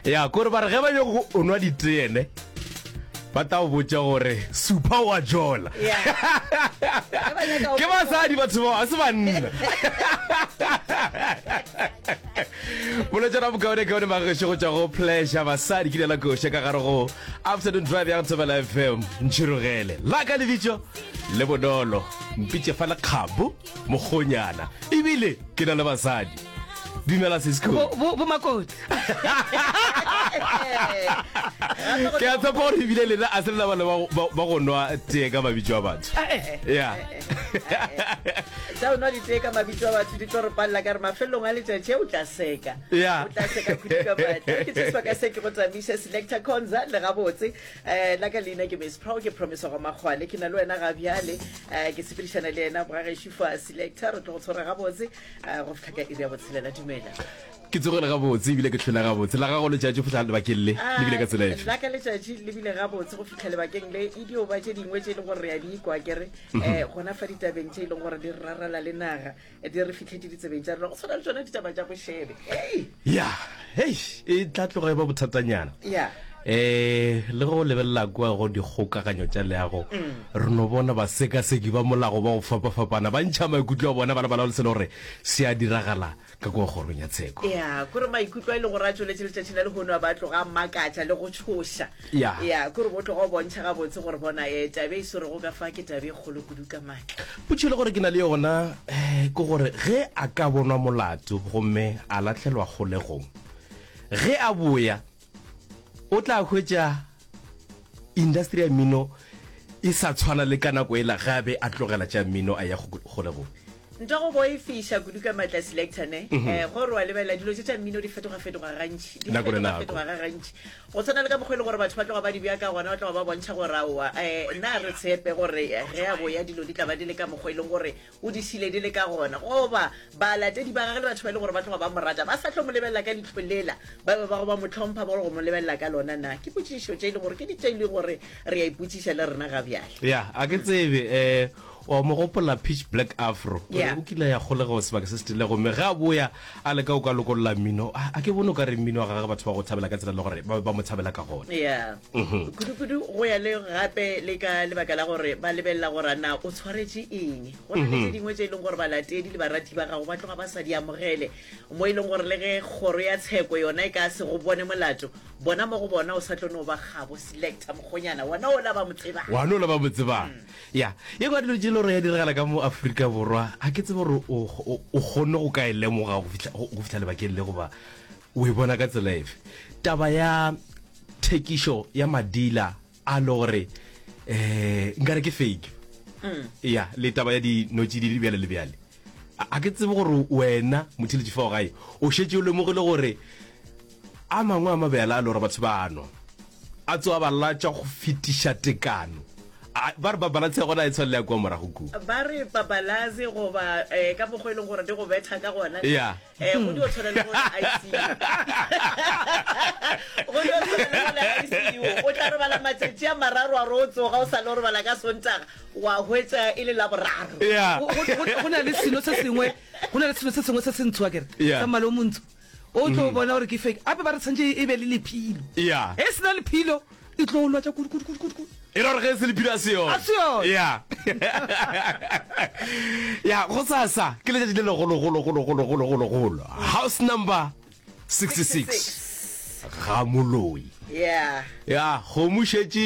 ya kore ba re ge ba nyoko o nwa diteene ba tao botša gore supa wa jola ke basadi batho bao a se banna boletsana bokaonekaone magešo go tšwa go pleasure basadi ke lela koša ka gare go afternoon drive ya thobela fm ntšhirogele la ka lebitso le bonolo mpitše fa lekgabo mokgonyana ebile ke na le basadi dumela sesco bomakoti ke a tshepa gore ebile lena a se le bana ba go nwa tee ka mabitso a batho ya eh, eh, eh, tsa o nwa ditee ka mabitso a batho di tlo re palela ka re mafelelong a letšatši o tla seka o tla seka kudu ka batho ke tseswa ka se ke go tsamaisa selector conza le gabotse Eh, la ka leina ke miss pro ke promiso go makgwane ke na le wena ga bjale eh, ke sepedišana le yena bogagešo fa selector re tlo go tshwara gabotse eh, go fitlha ka iri ya botshelela dumela ke tsogele gabotse ebile ke tlhola gabotse la gago letšatši go fitlha lebakeng le ah, lebile ka tsela efe la ka letšatši lebile gabotse go fitlha lebakeng le e dio ba tše dingwe tše e leng gore re ya di ikwa kere um gona fa ditabeng tše e leng gore di rarala le naga di re fitlhetse ditsebeng tša rena go tshwana le tsona ditaba tša bošebe ya hei e tla tloga e ba bothatanyana ya eh le go lebelela kwa go dikgokaganyo tša leago mm. re no bona ba sekaseki ba molago ba go fapafapana ba ntšha maikutlo a bona ba lebala le selo gore se a diragala ka kwa kgorong ya tsheko ya kore maikutlo a e le gore a tsweletše letšatšing la lehono a ba tloga a makatša le go tshoša ya ya kore bo tlogo bontšha gabotse gore bona um tabe e swerego ka fa ke tabe e kgolo kudu ka maatla potšhelo gore ke na le yona um ke gore ge a ka bonwa molato gomme a latlhelwa kgolegong ge a boya o tla hwetša industry ya mmino e sa tshwana le ka nako e la ge a be a tlogela tša mmino a ya kgolegong Nto go boifiša kudu ka matla selector ne mm -hmm. eh, gore wa lebelela dilo tse tša mmino di fetoga-fetoga gantši di fetoga-fetoga ga gantši go tshwana le ka mokgwa e le gore batho ba tloga ba di bja ka gona ba tloga ba bontšha gore aowa um eh, na re tshepe gore ge ya boya dilo di tla ba di le ka mokgwa e leng gore o di šile di le ka gona goba balatedi ba gage le batho ba e le gore ba tloga ba mo rata ba sa tlo mo lebelela ka ditlholela ba be ba go ba mo tlhompha ba go mo lebelela ka lona na ke potšišo tše e le gore ke ditše e le gore re ya ipotsiša le rena ga bjale ya a ke tsebe um O a mo gopola Pitch Black Afro? O re o kile a ya kgole ga o sebaka se se tiile gomme ge a boya a leka go ka lokolola mmino, a ke bone o ka re mmino wa gagwe batho ba go thabela ka tsela e le gore ba be ba mo tshabela ka gona. Ya. Kudu-kudu go ya le gape le ka lebaka la gore ba lebelela gore a na o tshwaretše eng. Go na le tše dingwe tše e leng gore balatedi le barati ba gago ba tloga ba sa di amogele, mo e leng gore le ge kgoro ya tsheko yona e ka se go bone molato, bona mo go bona o sa tlo no ba kgabo. Selector mokgonyana, wona ola ba mo tsebang. Wona ola ba mo tsebang. Ya, ye ngwa dilo tše le gore ya diregela ka mo Afrika Borwa, ga ke tsebe gore o kgonne go ka e lemoga go fihla lebakeng le goba o e bona ka tsela efe. Taba ya thekišo ya madila a le gore um nkare ke fake, mm. ya le taba ya dinotšididi bjale le bjale, ga ke tsebe gore wena motheletši fao gae o šetse o lemogile gore A mangwe a mabjala a lora batho ba a nwa, a tsoa ba latswa go fetiša tekano. A ba re papalatse ya gona a e tshwanela ya kua morago ku. Ba re papalatse goba eh, ka mokgwa e leng gore di go betha ka gona. Ya. Eh, go dio tshwana le go le ICU. Go dio tshwana le go le ICU. O tla robala matšatši a mararo a re o tsoga o sa lo robala ka Sontaga wa hwetša e le la boraro. Ya. Go- go- go- go na le selo se sengwe go na le selo se sengwe se se ntsho a kere Yeah. sa mmala o montsho o tlo mm-hmm. bona gore ke fake ape ba re tshwantse e be le lephilo e sena lephilo e tlo lwa tsa kudukudukudukudu e ra gore ge e se lephilo a se yone ya ya go sasa ke letšatši le legologologologologologolo house number 66 ga moloi ya kgomo šetše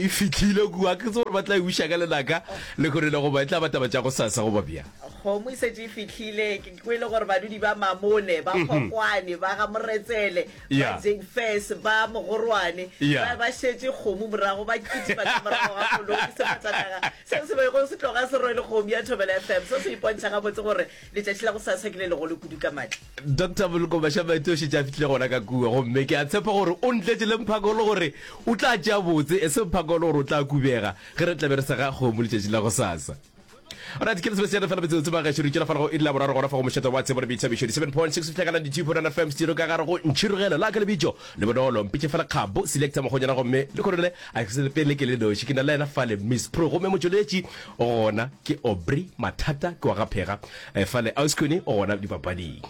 e fitlhile kua ke tse gore ba tla e buša ka lenaka le kgone le goba e tla bataba tša go sasa goba bjang Kgomo e setse e fitlhile ke kwele gore badudi ba Mamone ba mhm. Kgokwane ba ga Moretsele ba Jengfes ba Mogorwane ba ba shetse kgomo morago ba kitima ka morago ga koloi ke sefatanaga seo se bego se tloga se rwele kgomo ya Thobela FM se se ipontšha ga botse gore letšatši la go sa sa ke le legolo kudu ka matla Dr. Boloko Bashaba ete o shetse a fitlhile gona ka kua gomme ke a tshepa gore o ntletse le mphako le gore o tla tšea botse e se mphako le gore o tla kubega ge re tlabe re sega kgomo letšatši la go sasa Alright, ke lesebe seana fela metsotso ba gaešo re tšela fa lego e la boraro gona fa go mošetsa wa tsebo le boithabišo di 7.6 fihla ka 92.9 FM studio ka gare go ntšhirogelo la ka lebitšo le bonolo mpitše fela kgabo selecta mogonyana gomme le kgonole a ke sele pele ke le noši ke na le ena fale miss pro gomme motšweletši o gona ke Aubrey Mathata ke wa gaphega eh, fale Auskuni o gona dipapading